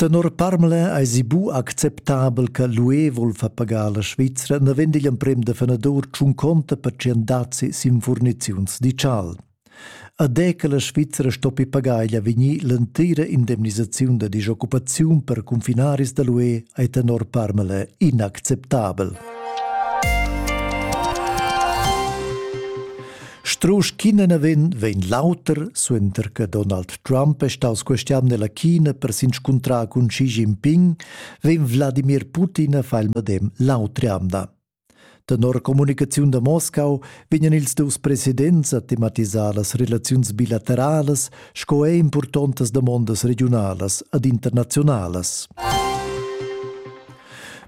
Tenor Parmela eisi bu acceptabel che l'UE vul far pagar la Svizra naven digl emprem defennadur tschun conta per tschien dazi sin furniziuns digital. Ad è che la Svizra stoppi pagar igl avegnir l'entira indemnisaziun da disoccupaziun per confinaris da l'UE ei tenor Parmela inacceptabel. Strusch ch'ina vegn, vegn l'auter, suenter che Donald Trump è staus questian nella China per s'inscuntrar cun Xi Jinping, vegn Wladimir Putin a far il medem l'autre anda. Tenor comunicaziun da Moscau vegnan ils dus presidents a tematisar las relaziuns bilateralas sco er importantas damondas regionalas ed internazionalas.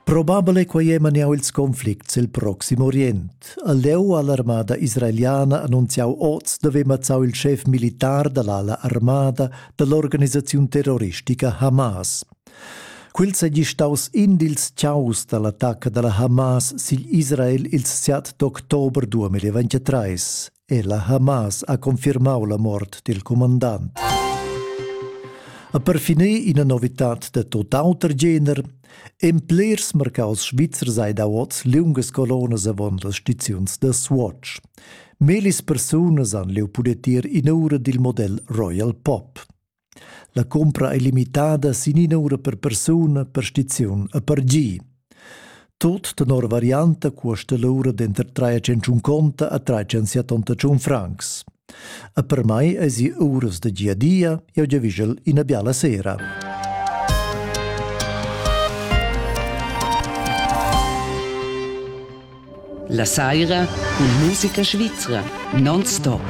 Probabile quai è maniau ils conflicts il proxim Orient. ha leu all'armada israeliana annunziau oz d'haver mazzau il schef militar dall'ala armada dall'organisaziun terroristica Hamas. Quel seigi staus in dils ciaus dall'attacca dalla Hamas sigl Israel ils 7 d'october 2023. e la Hamas ha confirmau la mort dil comandant. A per finir ina novitad de tot auter gener, en plers mercaus Schweizer sei da oz liungas colonas avon las stiziuns da Swatch. Melis persunas han leu pudet ir in ura dil model Royal Pop. La cumpra ei limitada sin ina ura per persuna per stiziun e per gi. Tut tenor varianta cuosta l'ura denter 350 a 378 francs. E per mai eisi uras da gia dia, jeu giavischel ina biala sera. La saira cun musica svizra non stop.